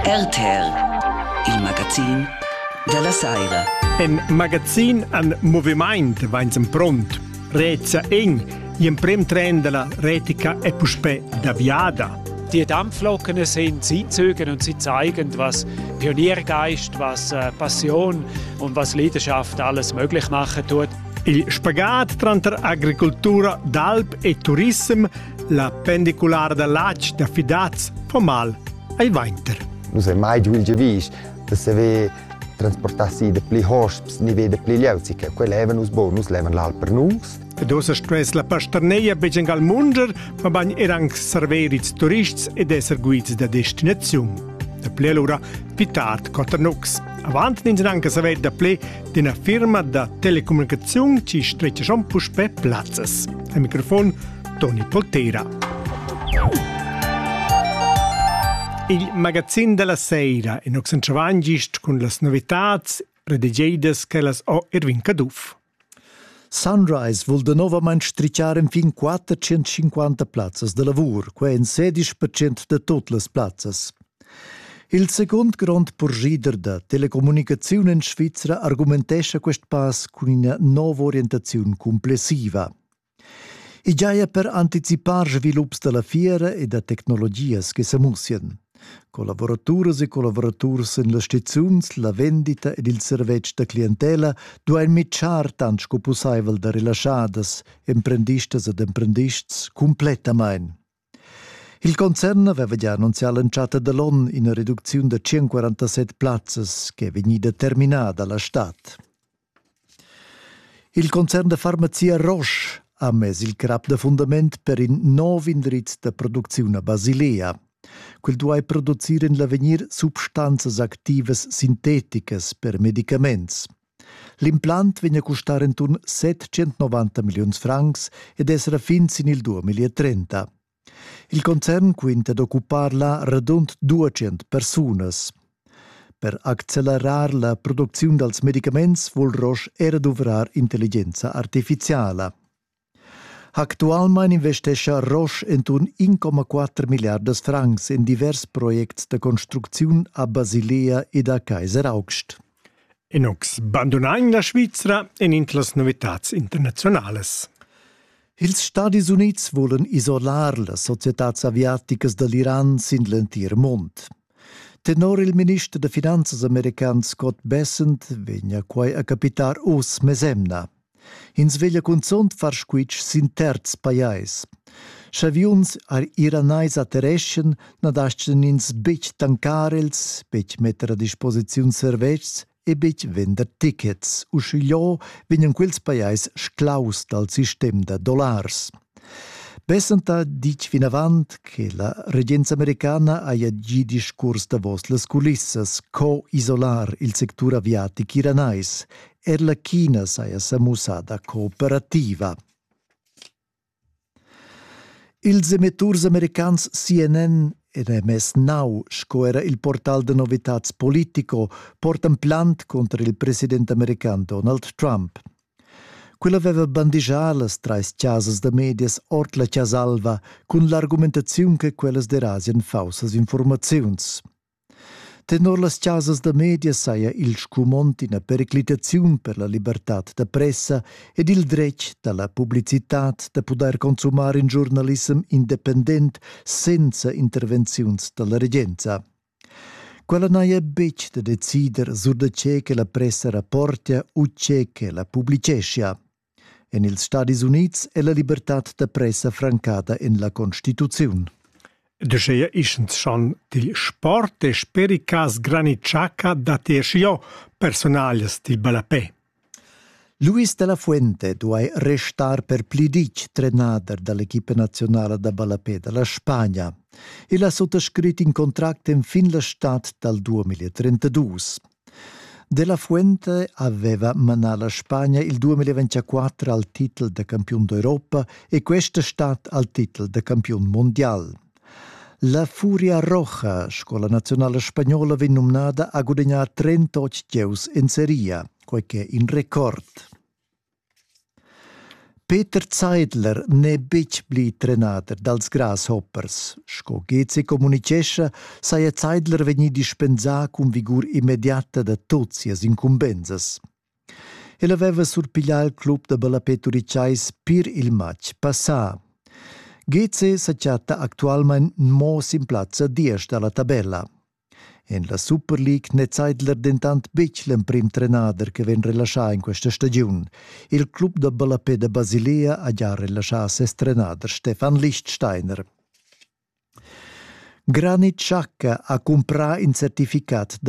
RTL, il magazin della saira. En magazin an moviment vainsen pront, Reza Eng, in prim tren della retica e puspe da viada. Die Dampflocken sind, sie zügen und sie zeigen, was Pioniergeist, was äh, Passion und was Leidenschaft alles möglich machen tut. Il spagat tranter agricoltura d'alp e turism La pendiculara da latg da fidaz fa mal ai vainter. Nus ei mai giu il giavisch da saver transportar si de pli hosps ni de pli leuzi che quel leva nus bon, nus levan l'al per nus. Ed ossa stuess la pasterneia begen al munder, ma bagn er anc server ils turists ed esser guids da destinaziun. Da ple lura fi tard Cotternucks. Avant nins anche saver da ple d'ina firma da telecommunicaziun ci stretgeschon puspè plazzas. Al microfon Toni Polteira. Il magazin della sera in Oxenchavan gist cun las novitats redigeidas che las ho Erwin Caduff. Sunrise vul novament stricciar infin 450 plazzas de lavur, quei en 16% de tot las plazzas. Il secund grond purschider da telecommunicaziun en Svizra argumentescha quest pass cun ina nova orientaziun cumplessiva. I giaja per anticipar svilups da la fiera e da tecnologias che sa mussian. Collavoraturas e collavuraturs en las stizuns, la vendita ed il servetsch da clientela duain mitschar tant sco pussaivel da relaschadas emprendistas ed emprendists cumplettamain. Il concern aveva gia annunzià l'entschatta da l'onn ina reducziun da 147 plazzas che è vegnida terminada la stad. Il concern da farmazia Roche ha mess il crap da fundament per in nov indriz da producziun a Basilea. Quel duai producir en l'avegnir substanzas activas sinteticas per medicaments. L'implant vegn a custar enturn 790 milliuns francs ed esra fin sin il 2030. Il concern quinta d'occupar là radund 200 persunas. Per accelerar la producziun dals medicaments vul Roche era duvrar intelligenza artificiala. Actualmein investescha Roche entuorn 1,4 milliardas francs in divers projects da construcziun a Basilea ed a Kaiseraugst. E nus bandunain la Svizra en in las novitads internazionalas. Ils Stadis Unids volen isolar las societads aviaticas dall'Iran sin l'entir mund. Tenor il minister da finanzas american Scott Bessent vegna quai a capitar oz mesemna. Ins veglia cunzont far squitsch sin terz pajais. Schaviuns ar iranais attereschan na daschten ins betg tancar els, betg metter a disposiziun servetschs e betg vender tickets, uschigliò vegnan quels pajais sclaus dal sistem da dollars. Bessenta ditg vinavant che la regenza americana haja gì discurs davos las culissas co isolar il sectur aviatic iranais. Er la China saja sa mussada cooperativa. Ils emetturs americans CNN ed MS Now sco era il portal da novitads Politico portan plant cunter il president american Donald Trump. Quella aveva bandigià las trais chasas da medias ord la Chasa Alva cun l'argumentaziun che quellas derasian faussas informaziuns. Tenor las chasas da medias saja il scumond ina periclitaziun per la libertad da pressa ed il dretg da la publicitad da pudair consumar in giornalissem independent senza intervenziuns da la regenza. Quella n'haja betg da decider sur da tge che la pressa rapportia u tge che la publiceschia. En ils Stadis Unids è la libertad da pressa francada en la Constituziun. De scheia ischens schon dil sport e spericas granitschaca dat io personalias dil ballapè. Luis de la Fuente duai restar per pli ditg trenader dall'equipa nazionala da ballapè dalla Spagna. El ha suttascrit in contract en fin la stad dal 2032. Della Fuente aveva manà la Spagna il 2024 al titel da campiun d'Europa e questa stat al titel da campiun mondial. La Furia Roja, scola nazionale spagnola, venne nominata a guadagnare 38 giochi in Serie A, quel che è in record. Peter Zeidler n'è betg pli trenader dals grasshoppers. Sco Gezi communitgescha, saja Zeidler vegnì dispensà cun vigur immediata da tut sias incumbensas. El aveva surpiglià il club da ballapé turitgais pir il matg passà. Gezi sa chatta actualmain mo sin plazza diesch da la tabella. En la Super League n'è Zeidler dentant betg l'emprim trenader che vegn relaschà en questa stagiun. Il club da ballapè da Basilea ha già relaschà ses trenader Stefan Lichtsteiner. Granit Xhaka ha cumprà in certificat da